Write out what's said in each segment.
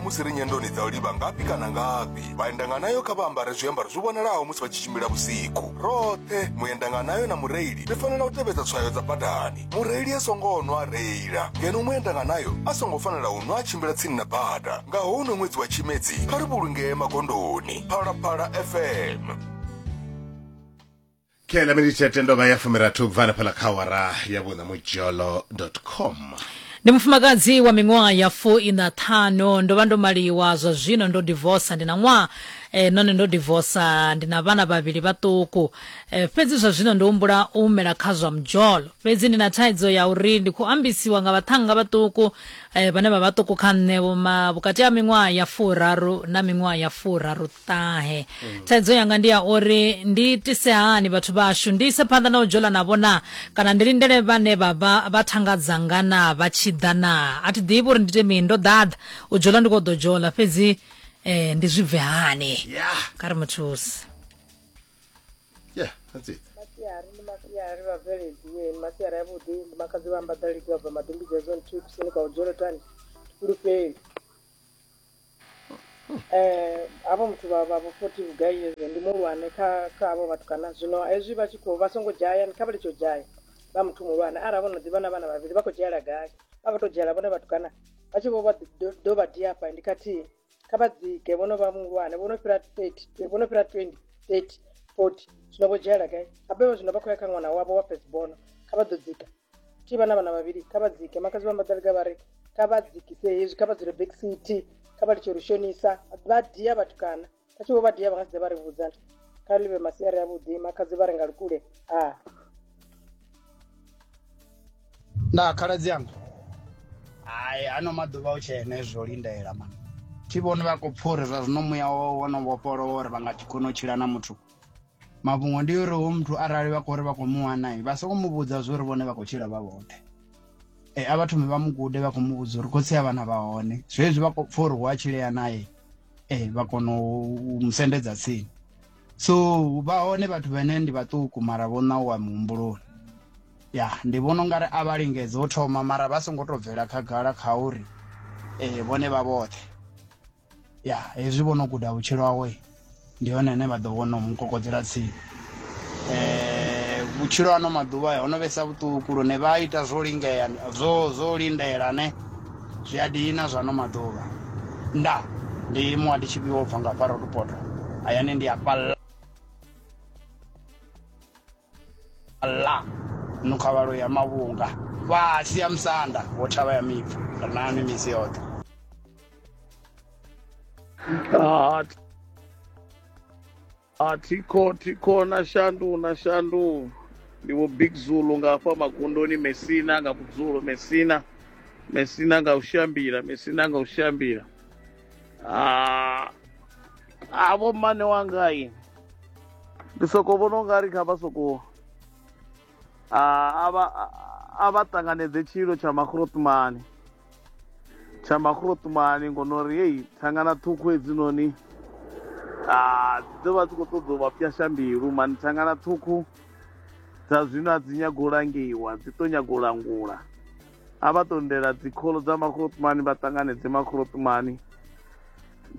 musi ri nyendoni dza u livha ngafhi kana ngafhi vhaendanganayo kha vha ambare zwiambaro zwi vhonalaho musi vha tshi tshimbila vhusiku roṱhe muendanganayo na mureili ri fanela u tevhedza tswayo dza badani mureili a songo nwa a reila ngeno muendanganayo a songo fanela u nwa a tshimbila tsini na bada nga houno ṅwedzi wa tshimedzi kha ri vhulungee magondoni phalaphala fm khe la miniti ya tendo vha ya fumirathi u bva hanefhala kha awara ya vhuṋa mudzholo com ndi mufumakadzi wa miṅwaha ya fu ina ṱhanu ndo vha ndo maliwa zwa zwino ndo divosa ndi na ṅwaha eh, none ndo divosa ndi na vhana vhavhili vhaṱuku eh, fhedzi zwa zwino ndo humbula u humela kha zwa mdzholo fhedzi ndi na thaidzo ya uri ndi khou ambisiwa nga vhaṱhannga vhaṱuku eh, vhane vha vhaṱuku kha nṋe vhoma vhukati ha miṅwaha ya furaru na miṅwaha ya furaru ṱahe thaidzo yanga ndi ya uri ndi tise hani vhathu vhashu ndi ise phanḓa na u dzhola navho na kana ndi lindele vhane vha vha vha thanga dzanga na vha tshi ḓa na a thi ḓivhi uri ndi ite mini ndo ḓaḓa u dzhola ndi khou ḓo dzhola fhedzi eh, ndi zwi bve hani Yeah. kha ri muthusi Yeah, that's it. masiari ndi masiari vhabveledzie ndi masiari avhuḓi ndi makadzi vha ambadalidzi vha bva madumbidzi ya zone two kusini kwa udzholotani fhulufheli eh havho muthu vha vha vho 40 vhugai years ndi muhulwane kha kha havho vhathu kana zwino hezwi vha tshi khou vha songo dzhaya kha vha litsho dzhaya vha muthu muhulwane arali vho no ḓivha na vhana vhavhili vha khou dzhiela gai vha vha to dzhiela vhone vhathu kana vha tshi vho vha do- do vha dia hafha ndi khathihi kha vha dzike vhono vha muhulwane vhono fhira 30 vhono fhira 20 30 40 zwino vho dzhiela gai habe vha zwino vha khou ya kha ṅwana wavho wa first bono kha vha ḓo dzika ti vha na vhana vhavhili kha vha dzike makadzi vha mbaḓaliga vha ri kha vha dzikise hezwi kha vha dzule back city kha vha litshe uri shonisa vha dia vhatukana kha tshi vho vha dia vha nga si dze vha ri vhudza nto kha ḽi vhe masiari avhuḓi makhadzi vha ri nga lukule a nda khaladzi anga hai ano maḓuvha u tshene zwo lindela ma thi vhoni vha khou pfha uri zwa zwino muya wo no vhofholowa uri vha nga kona u tshila na muthu mafhungo ndi uri hoyu muthu arali vha khou ri vha khou mu wana vha soko mu vhudza zwo uri vhone vha khou tshila vha vhoṱhe e a vha thome vha mu gude vha khou mu vhudza uri khotsi a vhana vha hone zwezwi vha khou pfha uri hu a tshilea naye e vha kona u mu sendedza tsini so vha hone vhathu vhene ndi vhaṱuku mara vho ṋauwa muhumbuloni ya ndi vhona ungari a vha lingedze u thoma mara vha songo to bvela khagala kha uri um vhone vha vhoṱhe ya hezwi vho no guda vhutshilo hawe ndi hone hane vha ḓo vhona mu kokodzela tsini um vhutshilo ano maḓuvha ho no vhesa vhuṱuku lune vha ita zwo lingea zwo zwo lindela ne zwi a dina zwa ano maḓuvha nda ndi muwa ndi tshifhiwo bva nga fara lupoto hayani ndi a falla la nukhavhalo ya mavhunga fhasi ya musanda wo thavha ya mipfu ri na mimisi yoṱhe a thikho thikho na shandu na shandu ndi vho big zulu nga hafha magondoni mesina nga vhudzulo mesina mesina nga u shambila mesina nga u shambila Ah, ah vho mmane wanga i ndi soko vhona u nga ri kha vha soko ah, a vha a vha ṱanganedze tshilo tsha makhrotumani tsha makhrotumani ngono ri heyi thangana ṱhukhu hedzinoni ah, dzi ḓo vha dzi khou ṱoḓa u vha pyasha mbilu mani thangana ṱhukhu dza zwino a dzi nyago u langiwa dzi tou nyago u langula a vha tondela dzikholo dza makhorotumani vha ṱanganedze makhorotumani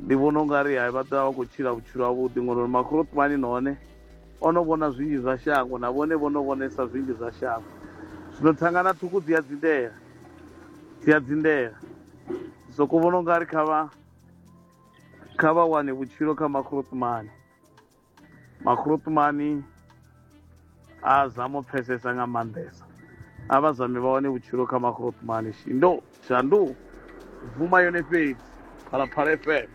ndi vhona ungari hai vha ḓovha vha khou tshila vhutshilo havhuḓi ngori uri makhorotumani nahone o no vhona zwinzhi zwa shango na vhone vho no vhonesa zwinzhi zwa shango zwino thangana ṱhukhu dzi a dzindela dzi a dzindela soko vhona ungari kha vha kha vha wane vhutshilo kha makhorotumani makhulutumani a zama u pfesesa nga maanḓesa a vha zami vha wane vhutshilo kha makhulutumani shindo shandu bvuma yone fhedzi phalaphala fm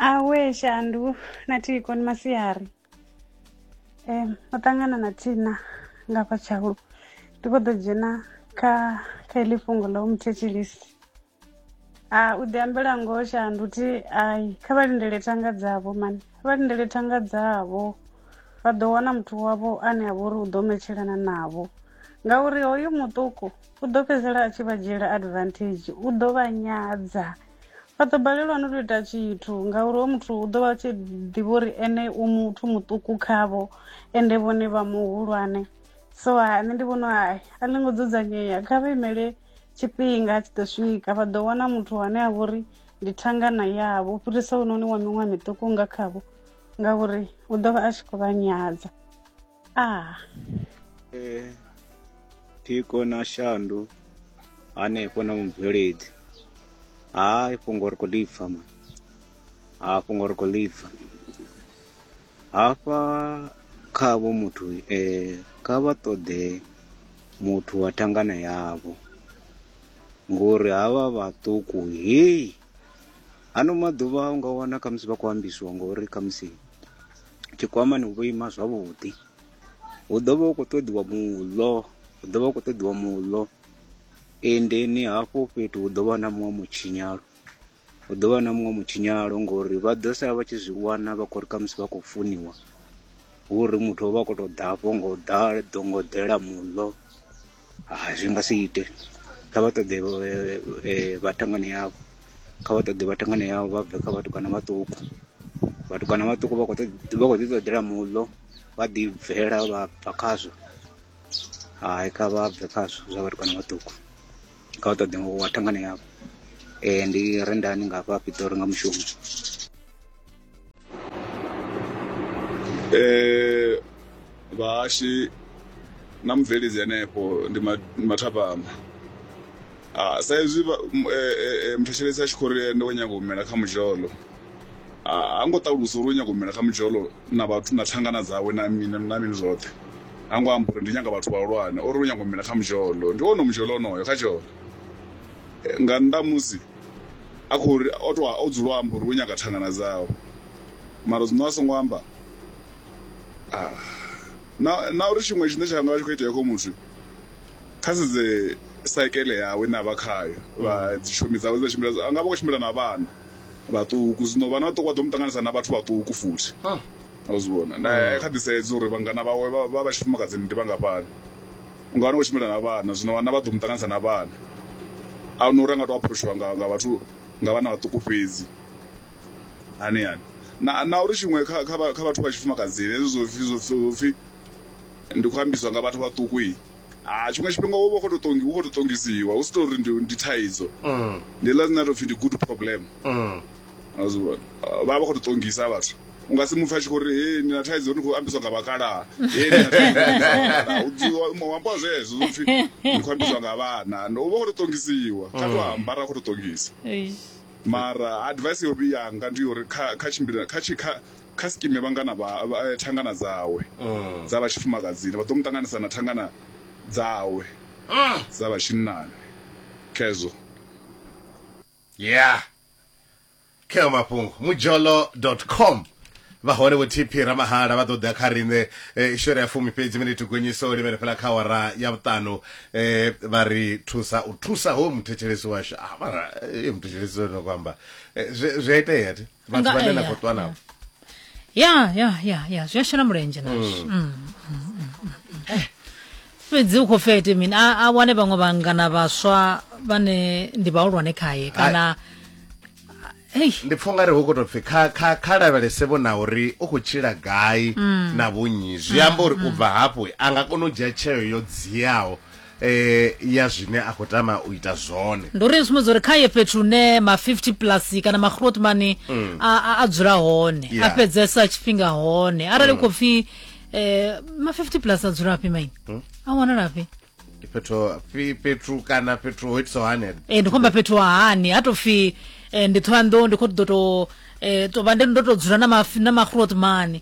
awe shandu na thiko ni masiari um o ṱangana na thina nga fha tshaulu ndi khou ḓo dzhena kha kha iḽi fhungo ḽa u muthetshelisi Ah, u ḓi ambela ngoho shandu thi ai kha vha lindele thanga dzavho mani kha vha lindele thanga dzavho vha ḓo wana muthu wavho ane a vha uri u ḓo metshelana navho ngauri hoyu muṱuku u ḓo fhedzisela a tshi vha dzhiela advantage u ḓo vha nyadza vha ḓo balelwa no to ita tshithu ngauri ho muthu u ḓo vha tshi ḓivha uri ene u muthu muṱuku khavho ende vhone vha muhulwane so ha nṋe ndi vhona hai a ḽi ngo dzudzanyea kha vha imele tshifhinga tshi ḓo swika vha ḓo wana muthu ane a vhori ndi thangana yavho u fhirisa unoni wa miṅwe miṱuku nga khavho ngauri u ḓo vha a tshi khou vha nyadza a ah. eh, thiko na shandu hanefho na mubveledzi ha fhungo ri khou ḽi pfa ma ha fhungo ri khou ḽi pfa Hafha kha avho muthu e, kha vha ṱoḓe muthu wa thangana yavho, ngori havha vhaṱuku hei ano maḓuvha u nga wana khamusi vha khou ambisiwa ngori khamusi tshikwamani hu vho ima zwavhuḓi hu ḓo vha hu khou ṱoḓiwa muḽo hu ḓo vha hu khou ṱoḓiwa muḽo endeni hafho fhethu hu ḓo vha na muṅwe mutshinyalo Hu ḓo vha na muṅwe mutshinyalo ngori vha ḓo sala vha tshi zwi wana vha khou ri khamusi vha khou funiwa hu uri muthu o vha a khou tou ḓafho nga u ḓala ḓo nga u ḓela muḽo hai zwi nga si ite kha vha ṱoḓe vhathangana yavho kha vha ṱoḓe vhathangana yavho vha bve kha vhatukana vhaṱuku vhatukana vhaṱuku vha khou vha khou ḓi ṱoḓela muḽo vha ḓi bvela vha bva khazwo hai kha vha bve khazwo zwa vhatukana vhaṱuku. kha u ṱoḓe wa thangana yavho um ndi rendani nga hafha pitori nga mushumo um vhahashi na mubveledzi henefho ndi mathapama sa izwi eh, eh, eh, muthetshelesi a tshi khou ri ende wo nyanga u humela kha muzholo ha ngo ṱalusa uri u nyago mela kha mudzholo na vhathu na thangana dzawe na mini na mini zwoṱhe ha ngo amba uri ndi nyaga vhathu vhahulwane ori u nyago mela kha mudzholo ndi wone mudzholo onoyo kha tsholo nga nnḓa musi a khou ri o to o dzula o amba uri u nyaga thangana dzawe mara zwino a songo amba na na uri tshiṅwe tshine tsha nga vha tshi khou itea kho muthu kha sedze saikele yawe na vha khayo vha dzishomi dzawe dza tshimbila a nga vha khou tshimbila na vhana vhaṱuku zwino vha na vhaṱuku vha ḓo mu ṱanganisa na vhathu vhaṱuku futhi a zwi vhona na kha ḓi sedza uri vhangana vhawe vha vha vha tshifumakadzini ndi vhangafhani u nga wana u tshimbila na vhana zwino vhana vha ḓo mu ṱanganisa na vhana a huna uri a nga to aphuroshiwa nga nga vhathu nga vhana vhaṱuku fhedzi hani hani na na uri tshiṅwe kha kha kha vhathu vha tshifumakadzini hezwi zwo pfhi zwo pfhi ndi khou ambiswa nga vhathu vhaṱuku. Ah, tshiṅwe tshifhinga wo vha u khou tou ṱongi- u khou tou ṱongisiwa hu si tou uri ndi ndi thaidzo Mm, ndi ḽa zwine a tou pfhi ndi good problem mm. a zwi vhona Ah, vha vha vha khou tou ṱongisa vhathu u nga si mupfha tshi khou ri he ni na thaidzo ni khou ambiswa nga vhakalaha he ni na thaidzo ni ambiswa nga vhakalaha." U dzhiwa mu ambiwa zwezwo zwo pfhi ni khou ambiswa nga vhana no u vha u khou tou ṱongisiwa kha tou amba ra khou tou ṱongisa Eish. mara advice yo vhiyanga ndi uri kha kha tshimbila kha tshi kha Kha sikime vhangana vha thangana dzawe dza vha tshifumakadzini vha ḓo mu ṱanganisa na thangana dzawe dza vha tshinnani. Khezwo. Yeah. Kheo mafhungo mujolo dot com vha hone vho TP Ramahala vha ḓo ḓa kha riṋe ishore ya fumi fhedzi mini thugonyiso limene fhela kha wara ya vhuṱanu vha ri thusa u thusa ho muthetshelesi washu a mara muthetshelesi no kwamba zwe zwe itea thi vhathu Nga- vhane na eh, khou ṱwa navho ya ya ya ya zwi a shela mulenzhe nazwo Mm. Mm, mm, mm, mm, mm. fhedzi u khou fete mini a a wane vhaṅwe vhangana vhaswa vhane ndi vhahulwane khaye kana hei ndi pfha ungari hu khou tou pfi kha- kha kha lavhelese vho na uri u khou tshila gai Mm. na vhunyi zwi amba uri u bva hafho a nga kona u dzhia tsheo yo dziaho eh ya zwine a khou tama u ita zwone ndi uri sumbedza uri kha ye fhethu hune ma 50 plus kana magrowth money mm. a, a, a dzula hone yeah. a fhedzesa tshifhinga hone arali mm. khou pfi eh, ma 50 plus a dzula afhi maini mm. a wanalafhi fhethu fhethu kana fhethu ho itisaho hani e eh, ndi khomba fhethu hani a to pfi eh, ndi thohoyanḓou ndi khou ḓo to eh, to vha ndi ndo to dzula na magrowth money